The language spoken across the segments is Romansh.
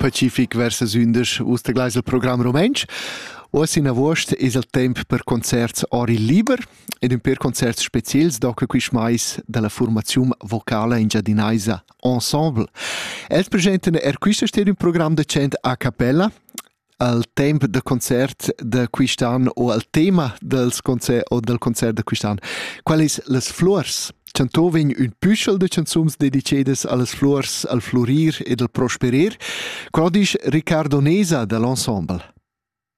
Pacific versus ündesch us da gleis il program rumantsch. Oz in avuost es il temp per concerts ori liber ed ün per concerts speziels do que quist mais da la formaziun vocala engiadinaisa Ensemble. Els presentan er quista sera ün program decent a cappella al temp da concert da quist'an o al tema dals concerts o dal concert da quist'an. Qual es las fluors? Chanto vegn ün püschel de canzuns dedicedas allas flors, al flurir ed al prosperer. Qual disch Riccardo Nesa da l'ensemble?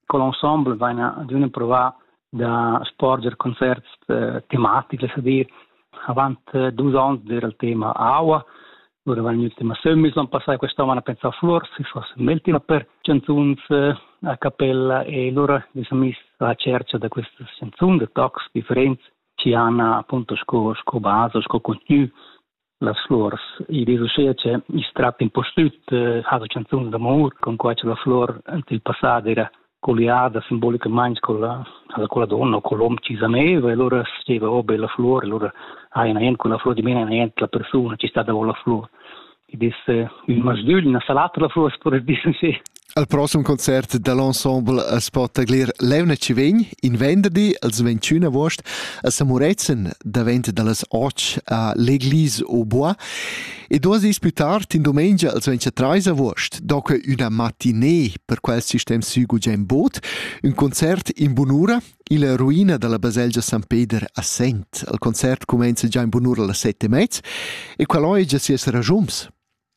Quell'ensemble vaina ad üna provà da sporger concerts eh, tematics, es a dir, avant eh, dus ons era il tema aua, lura van il tema sömmis l'on passà quest'on a pensar flors, si fosse il tema per canzuns eh, a cappella e lura vi siamo messi a cerca da queste canzoni, de tocs differenti ci hanno appunto sco, sco base, sco contenuto las flurs. I dis uschea che i's tratta impustüt eh, ha la canzun d'amur, con quai che la flur ant il passat era colliada simbolicamente con la, con la donna o con l'uomo ci sameva e allora steva oh bella flore, allora hai una con la flore di mena una la persona ci sta davanti la flore. E disse, il masdügl una salata la flore, si può dire sì. Al prossem concert da l'ensemble as po taglir l'euna chi vegn in venderdi als 21 agost a Samuretzen davent da las 8 a l'Eglise au Bois e duos dis plü tard in dumengia als 23 agost do que üna matinée per quel sistem sü gugent bod, ün concert in bunura illa ruina da la baselgia San Peder a Sent. Il concert cumenza già in bunura las 7 e mezz e qual ho già sias ragiuns.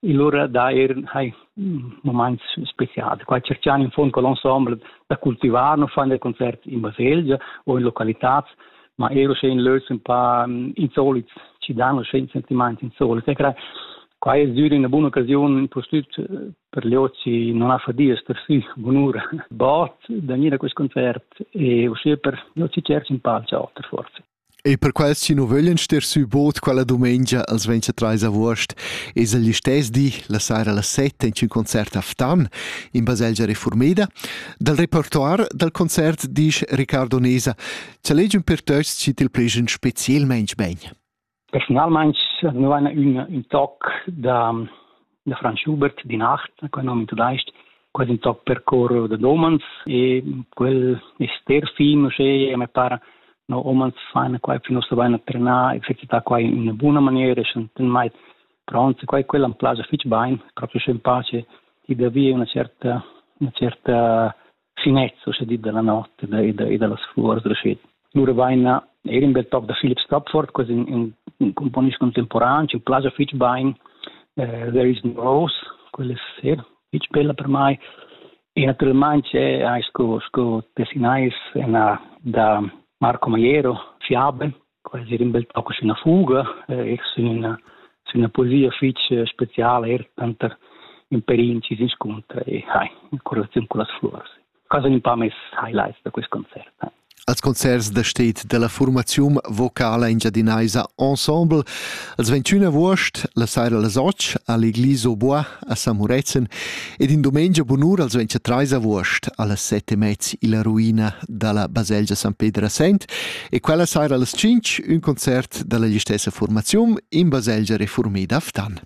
e lura dà eir hai mumaints specials. Qua tscherchan in fond col ensemble da cultivar, nu fan der concerts in baselgia o in localitats, ma eir uschè in lös ün pa insolits, ci dan uschè ün sentimaint insolit. E cra qua es dür üna buna occasiun pustüt per gli ozi non ha fadias per si bunura bod da gnir a quist concert e uschè per gli ozi tscherch ün pal auter forse. Ei per quels chi nu vöglian ster sü bod quella dumengia als 23 avuost es el listess di la saira las 7 in ün concert a Ftan in baselgia reformeda. Dal repertoir dal concert disch Riccardo Nesa cha legiun per töchs chi til plejan specielmaing bain. Personalmaing nu vaina ün ün toc da da Franz Schubert di Nacht, quel nom in tudaisch, quasi in toc per cor da domans e quel è ster film, e me pare no omans faina quai fin ossa vaina trenà, exercità quai in una buona maniera, e ten mai pronti, quai quella am place fitch bain, proprio schön pace, e da via una certa, una certa sinezzo, sche dit dalla notte e da, e da, e dallas flurs reuschet. Lura vaina er in bel toc da Philip Stopford, così in, un, un componist contemporan, ci plagia fitch bain uh, There is no Rose, quella è ser, fitch bella per mai. E naturalmente c'è sco, sco tessinais da Marco Maiero, Fiabe, quasi er in bel toc sin la fuga, eh, sin una, sin una poesia fitg speciala, er tanter in perin ci s'inscontra e hai, in correlazione con las flores. Cosa un po' mes highlights da questo concerto. Eh. Als concerts da stet della formazione vocala engiadinaisa Ensemble, als 21 agost, la saira alle 8, all'Eglise au Bois, a San Murezzan ed in dumengia bunur als ventia trais avuost allas sette e mezz illa ruina dalla baselgia San Pedro Sent e quella saira allas cinc ün concert dalla gistessa formaziun in baselgia reformida a Ftan.